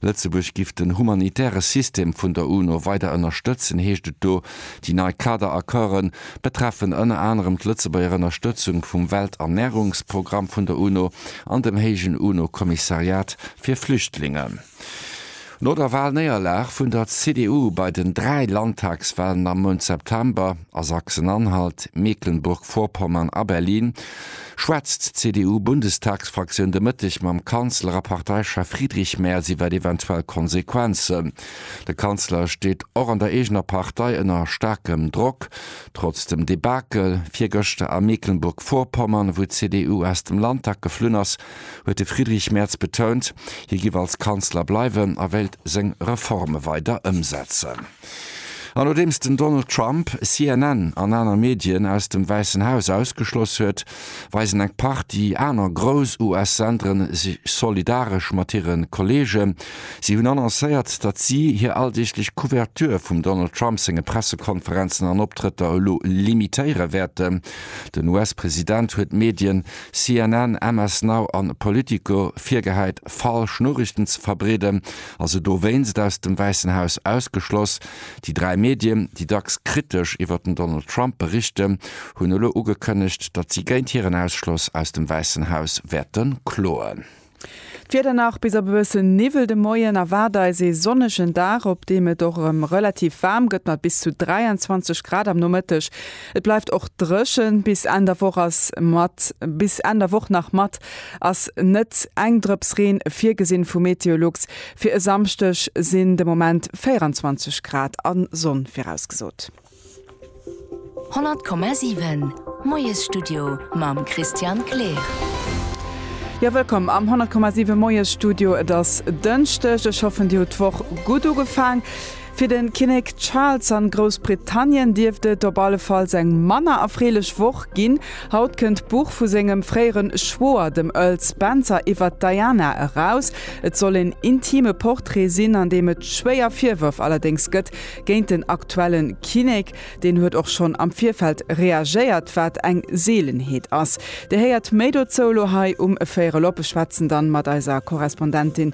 Lëtzebuerg giff den humanitäre System vun der UNO weider ënnerstëtzen, heescht et do. Déi nei Kader-Accorde betreffen ënner anerem d'Lëtzebuerger Ënnerstëtzung vum Welternärungsprogramm vun der UNO an dem héijen UNO-Kommissariat fir Flüchtlingen. No der Walnéierlag vun der CDU bei den dräi Landtagswalen am Mount September a Sachsen-Anhalt, Mecklenburg-Vorpommern a Berlin, Schwätzt d'CDU-Bundestagsfraktioun de Mëtteg mam Kanzler a Parteichef Friedrich Merz iwwer eventuell Konsequenzen? De Kanzler steet och an der eegener Partei ënner staarkem Drock. Trotz dem Debakel virgëschter a Mecklenburg-Vorpommern, wou d'CDU aus dem Landtag geflunn ass, huet de Friedrich Merz betount, hie giff als Kanzler bleiwen a wéilt seng Reforme weider ëmsetzen. An nodeems den Donald Trump CNN an aner Medien aus dem Wäissen Haus ausgeschloss huet, weisen eng Partie aner grouss US-Sendere sech solidaresch mat hire Kolleegen. Si hunn annoncéiert, datt si hir alldeeglech Couverture vum Donald Trump senge Pressekonferenzen an Optrëtter elo limitéiere wäerten. Den US-President huet d'Medien CNN, MS Now an Politico virgehäit falsch Noriichten ze verbreeden. a se dowéinst aus dem Wäissen Haus ausgeschloss. Déi dräi Medien, déi dacks kritesch iwwer den Donald Trump berichten, hunn elo ugekënnegt, datt si géint hiren Ausschloss aus dem Wäissen Haus wäerte kloen. D'Wieder nach bis op e bëssen Niwwel de Moien erwaart eis ee sonnegen Dag, op deem et och erëm relativ waarm gëtt mat bis zu 23 Grad am Nomëtteg. Et bleift och dréchen bis Enn der Woch ass mat bis Enn der Woch nach mat ass net eng Drëps Reen virgesinn vu Meteolux. Fir e Samschdeg sinn de Moment 24 Grad a Sonn virausgesot. 100,7 Moiesstudio mam Christian Kleer. Jo, wëllkomm am 100,7 Moiesstudio. Et ass Dënschdeg. Ech hoffen, Dir hutt d'Woch gutt ugefaang. Fir de Kinnek Charles an Groussbritannien dierft et op allefalls eng manner erfreelech Woch ginn. Haut kënnt d'Buch vu sengem fréieren Schwoer, dem Earl Spencer, iwwert Diana eraus. Et soll een intime Portrait sinn, an deem et schwéier Virwërf allerdéngs gëtt géint den aktuellen Kinnek. Deen huet och schonn am Virfeld reagéiert, wat eng Seelenheet ass. Dir héiert méi dozou elo hei um Véierel op. Ech schwätzen dann mat eiser Korrespondentin